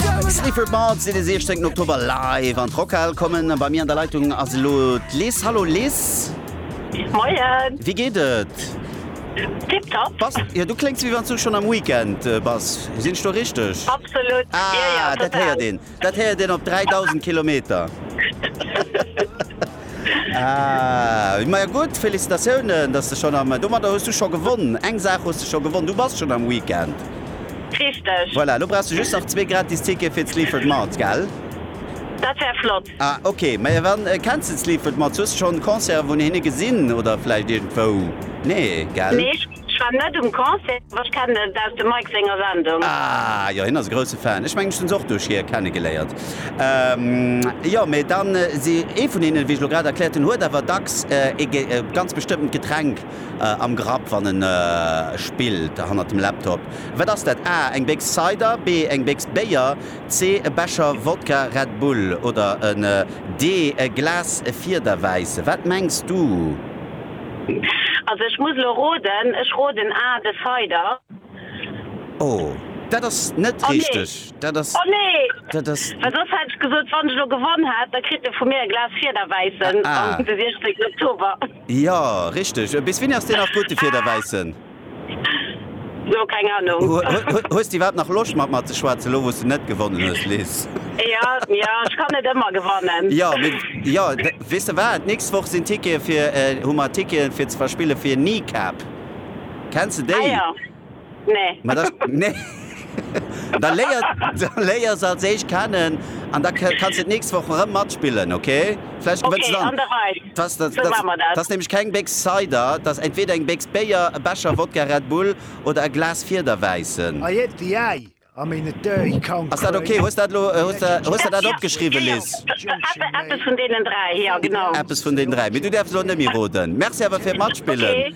Sleaford Mods si de 16. Oktober live an d'Rockhal kommen. Bei mir an der Leitung ass elo d'Liz. Hallo Liz. Moien. Wéi geet et? Tiptop. Bass, jo du kléngs wéi wann s du schonn am Weekend bass. Sinn ech do richteg? Absolut. Ah, jo, jo, dat héiert total. een. Dat héiert een op 3.000 Kilometer. Ahh, majo gutt, Félicitatiounen, dass de schonn am, domadder hues du scho gewonn, eng Saach hues de scho gewonn, du bass schonn am Weekend. Richteg. Voilà, elo brauchs de just nach zwee gratis Tickete fir d'Sleaford Mods, gell? Dat wär flott. Ah ok, majo wann, kenns de d'Sleaford Mods? Hues de schonn Concerten vun hinne gesinn oder vläicht iergendwou? Nee, gell? Nee. Ech war net um Concert, ma ech kennen et aus dem Mike senger Sendung. Ah jo, hien ass e grousse Fan. Ech mengen ech hunn se och duerch hie kennegeléiert. Jo, mee dann si ee vun hinnen, wéi ech elo grad erkläert hunn, huet awer dacks ee ganz bestëmmtent Getränk am Grapp, wann en spillt hannert dem Laptop. Wat ass dat? A, Eng Béchs Cider, B, Eng Béchs Béier, C, E Becher Wodka Red Bull oder en D, E Glas Fiederwäisse. Wat mengs du? Also ech muss elo roden, ech roden A, de Cider. Oh, dat ass net richteg. Dat ass. Oh nee! Dat ass. Well soss hätt ech gesot, wann ech elo gewonn hätt, da kritt e vu mir e Glas Fiederwäissen am 16 Oktober. Jo, richteg. Bis wéini ass deen nach gutt, de Fiederwäissen? Lo keng Ahnung. Hues de iwwerhaapt nach Loscht mat mer ze schwätzen, elo wou s de net gewonnen hues, Liz? Jo, jo, ech kann net ëmmer gewannen. Jo, mee jo, weess de wat, d'nächst Woch sinn Tickete fir, hu mer Ticketen fir ze verspillen fir Kneecap. Kenns de Ah déi? jo, nee. Ma da, nee. Da léier se als éischt kennen an da kanns de d'nächst Woch erëm matspillen, okay? Vläicht gewënns de dann. Dat ass nämlech keng Béchs Cider, dat ass entweeder eng Béchs Béier, e Becher Wodka Red Bull oder e Glas Fiederwäissen. Ass dat okay? Hues der dat opgeschriwwen, Liz? Eppes vun deenen dräi. Mee du däerfs elo net méi roden. Merci awer fir d'Matspillen.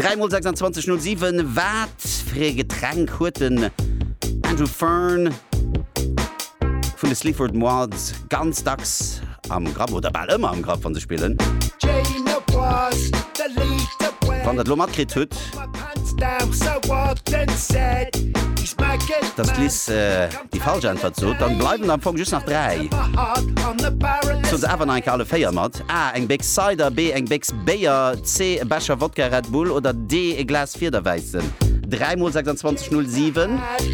Dräi mol 26 no 7, wat fir ee Getränk huet den Andrew Fearn vun de Sleaford Mods ganz dacks am Grapp oder bal ëmmer am Grapp, wann se spillen? Wann der et elo matkritt hutt, dass d'Liz déi falsch Äntwert sot, dann bleiwen der am Fong just nach dräi. Soen se awer nach eng Kéier alle véier mat. A, Eng Béchs Cider, B, Eng Béchs Béier, C, E Becher Wodka Red Bull oder D, E Glas Fiederwäissen. Dräi mol 26, 0, 7.